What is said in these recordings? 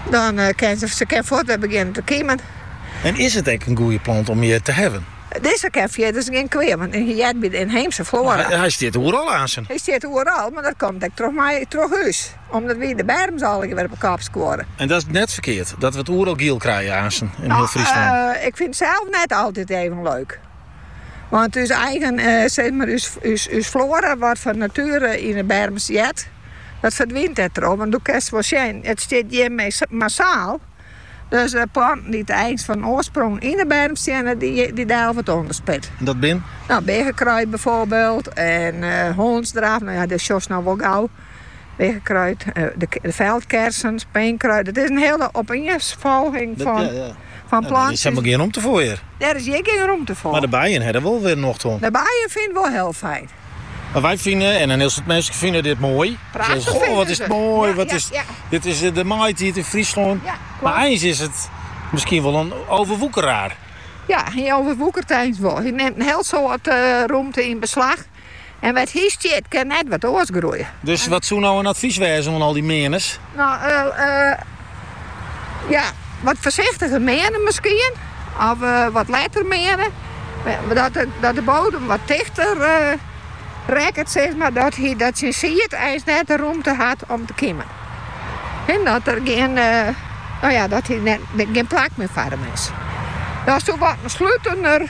Dan kin se se kin fuort wer begjinne te kimen. En is it ek in goeie plant om hjir te hawwen? Dizze kin fierders gjin kwea, want hy heart by de ynheemse floara. Hy stiet oeral aansen. Hy stiet oeral, mar dat komt ek troch my troch ús, omdat wy de berms allegear wer op 'e kop skuorre. En dat is net ferkeard, dat we it oeral giel krije, aansen, yn hiel Fryslân? Ik fyn it sels net altyd even leuk. Want ús eigen, eh, zeg mar, ús, ús, ús floara wat fan natuere yn 'e berm stiet, dat ferdwynt dêrtroch. Want doe kinst wol sjen, it stiet hjir massaal. Dus de planten dy't der eins fan oarsprong yn 'e berm steane, dy dy delve it ûnderspit. En dat bin? Nou, biggekruid byfoarbyld en eh, hondsdraf. Nou ja, dêr sjochst no wol gau. Weagekruid, de feldkersen, speenkruid. It is in hiele opeensfolging fan plantsjes. Der is him gjin rûmte foar hjir. Der is hjir gjin rûmte foar. Mar de bijen ha der wol wer nocht oan. De bijen fine it wol hiel fyn. Mar wy fine, en in hiel soad minsken fine dit moai. Prachtich fine se it. Goh, wat is it moai. Dit is de maitiid yn Fryslân. Mar eins is it miskien wol in overwoekeraar. Ja, hy overwoekert eins wol. Hy nimt in hiel soad rûmte yn beslach. En wêr't hy stiet kin net wat oars groeie. Dus wat soe no in advys wêze oan al dy meaners? No, ja, wat foarsichtiger meane miskien. Of wat letter meane. Dat de bodem wat tichter rekket, sis mar. Dat hy dat syn sied eins net de rûmte hat om te kimen. En dat er gjin, no ja, dat hy net gjin plak mear foar him is. Dat soe wat in slutener.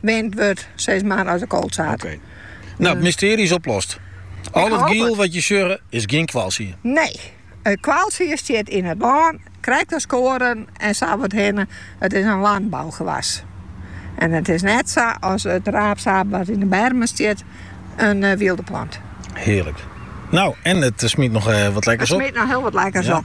Wend wurdt sis mar as de koolzaad. Oké. Nou, it mystearje is oplost. Al it giel wat je sjogge is gjin koalsied. Nee, it koalsied stiet yn it lân, krekt as koaren en sa wat hinne. It is in lanbougewas. En it is net sa as it raapzaad wat yn de bermen stiet in wylde plant. Hearlik. Nou, en it smyt noch wat lekkers op. It smyt noch hiel wat lekkers op.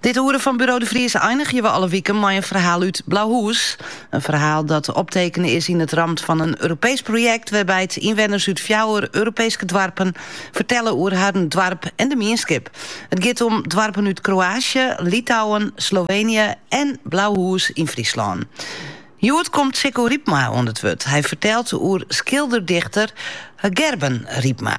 Dit oere fan Buro de Vries einigje we alle wiken mei in ferhaal út Blauhûs. In ferhaal dat optekene is yn it ramt fan in Europeesk projekt wêrby't ynwenners út fjouwer Europeeske doarpen fertelle oer harren doarp en de mienskip. It giet om doarpen út Kroaasje, Litouwen, Slovenië en Blauhûs yn Fryslân. Hjoed komt Sicco Rypma oan it wurd. Hy fertelt oer skilder-dichter Gerben Rypma.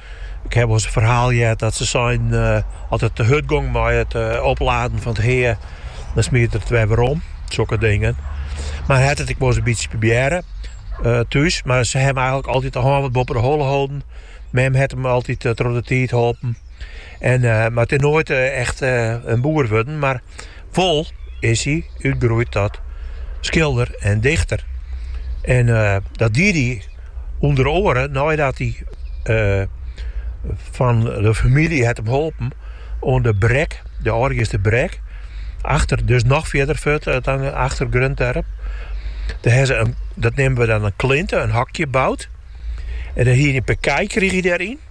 Ik haw wolris in ferhaal heard dat se sein, as it te hurd gong mei it opladen fan it hea, dan smiet er it wer werom. Sokke dingen. Mar hat it ek wolris in bytsje probearre thús, mar se hawwe him eigenlik altyd de hân wat boppe de holle holden. Mem hat him altyd troch de tiid holpen. En, mar it is noait echt in boer wurden, mar Wol is hy útgroeid tot skilder en dichter. En eh, dat die hy ûnder oare neidat hy eh, fan de famylje hat him holpen oan de brek, de Aldegeaster Brek, achter, dus noch fierder fuort eh, dan achter Greonterp. Dêr hawwe se in, dat neame we dan in klinte, in hokje boud. En dan hie hy in pear kij krige hy dêryn.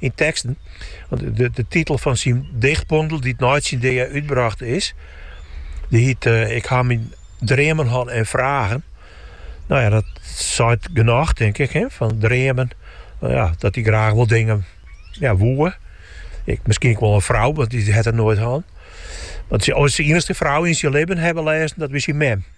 Yn teksten, want de titel fan syn dichtbondel dy't nei syn dea útbrocht is, dy hiet Ik ha myn dreamen hân en fragen. No ja, dat seit genôch tink ik, fan dreamen, no ja, dat hy graach wol dingen ja, woe. Ek miskien ek wol in frou, want dy hat er noait hân. Want syn iennichste frou yn syn libben, hawwe we lêzen, dat wie syn mem.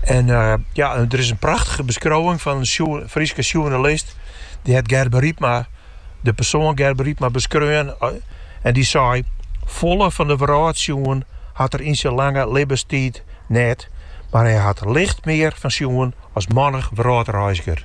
En ja, der is in prachtige beskriuwing fan in Fryske sjoernalist. Dy hat Gerben Rypma, de persoan Gerben Rypma, beskreaun. En dy sei, Folle fan de wrâld sjoen hat er yn syn lange libbenstiid net, mar hy hat licht mear fan sjoen as mannich wrâldreizger.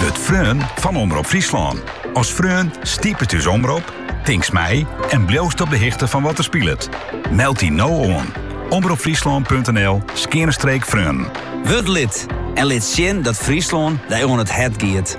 Wurd freon fan Omrop Fryslân. As freon stipest ús omrop, tinkst mei en bliuwst op de hichte fan wat der spilet. Meld dy no oan. Omropfryslân.nl skeane streek freonen. Wurd lid en lit sjen dat Fryslân dy oan it hert giet.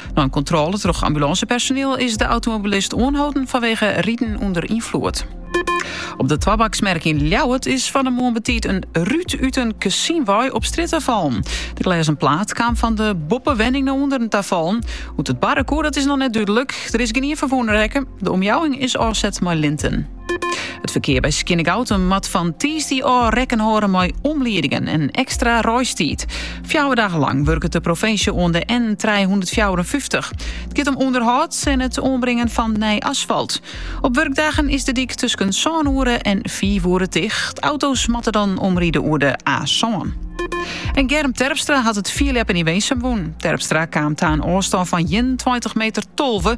Nei in kontrôle troch ambulânsepersoniel is de automobilist oanholden fanwege riden ûnder ynfloed. Op de Twibaksmerk yn Ljouwert is fan 'e moarn betiid in rút út in kezyn wei op strjitte fallen. De glêzen plaat kaam fan de boppewenning nei ûnderen ta fallen. Hoe't it barre koe, dat is noch net dúdlik. Der is gjinien ferwûne rekke. De omjouwing is ôfset mei linten. It ferkear by Skearnegoutum moat fan tiisdei ôf rekken hâlde mei omliedingen en ekstra reistiid. Fjouwer dagen lang wurket de provinsje oan de N354. It giet om ûnderhâld en it oanbringen fan nij asfalt. Op wurkdagen is de dyk tusken sân oere en fiif oere ticht. Auto's moatte dan omride oer de A-sân. En Germ Terpstra hat it fierljeppen yn Winsum wûn. Terpstra kaam ta in ôfstân fan ienentweintich meter tolve.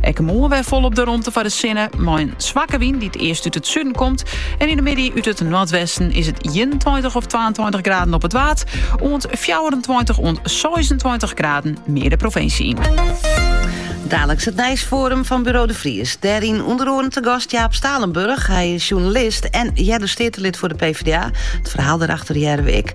Ek de moarn wer folop de romte foar de sinne, mei in swakke wyn dy't earst út it suden komt. En yn de middei út it noardwesten is it ienentweintich of twaentweintich graden op it Waad, oant fjouwerentweintich oant seisentweintich graden mear de provinsje yn. Daliks it nijsforum fan Buro de Vries. Dêryn ûnder oaren te gast Jaap Stalenburg. Hy is sjoernalist en earder steatelid foar de PvdA. It ferhaal dêrachter hearre we ek.